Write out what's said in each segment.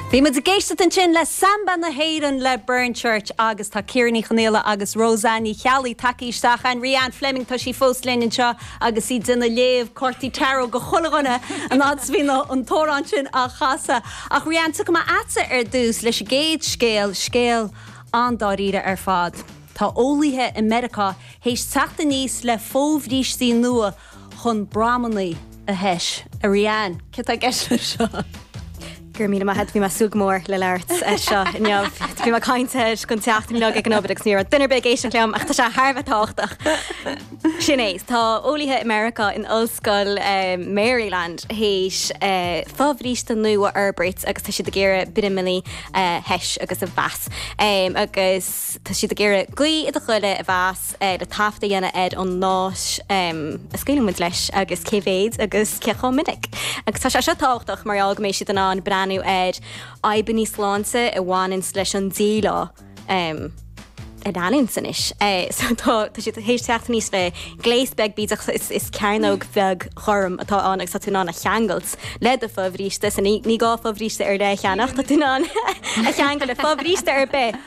Bhí muid ag éisteacht ansin le Samba na hÉireann le Burn Church agus tá Ciara Ní Chonghaile agus Róisín Ní Cheallaigh tagtha isteach. Rian Fleming, tá sí fós linn anseo agus í ag déanamh léamh cártaí Tarot do chuile dhuine an fhad 's bhí na an t-amhrán sin á chasadh. Ach Rian, tiocfaidh mé a'dsa ar dtús leis an gcéad scéal, scéal an-dáiríre ar fad. Tá eolaithe i Meiriceá théis teacht aníos le fo-bhrístí nua chun bramannaí a thomhas. A Rian, céard atá i gceist leis seo? Go raibh míle maith agat, bhí mé ag súil go mór le labhairt faoi seo inniu. Bhí mé ag caint air go leanúnach ag an obair agus ní raibh duine ar bith ag éisteacht liom ach tá sé thar a bheith tábhachtach. Sin é, tá eolaithe i Meiriceá in Ollscoil Maryland théis fo-bhríste nua a fhorbairt agus tá siad ag iarraidh bramannaí a thomhas agus a mheas. Agus tá siad ag iarraidh gaoth i do ghoile a mheas. le taifead a dhéanamh ar an nós a scaoileann muid leis agus cé mhéad agus cé chomh minic. Agus tá sé seo tábhachtach mar gheall go mbeidh siad in ann breathnú ar fhadhbanna sláinte a bhaineanns leis an díleá a leanúint anois. So tá siad théis teacht aníos le gléas beag bídeach, is cearnóg bheag ghorm atá ann agus tá tú in ann é a cheangailt le do fobhríste. So ní gá fobhríste ar leith a cheannach, tá tú in ann é a cheangal le fobhríste ar bith.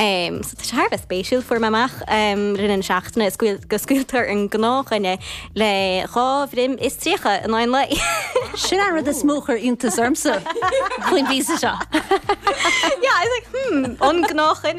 Sea, tá sé thar a bheith spéisiúil. Fuair mé amach i rith na seachtaine go scaoileann an gnáthdhuine le dhá bhroim is tríocha in aon lae! Sin an rud is mó a chuir iontas ormsa faoin bpíosa seo. Yeah, I was like, hmm, an gnáthdhuine?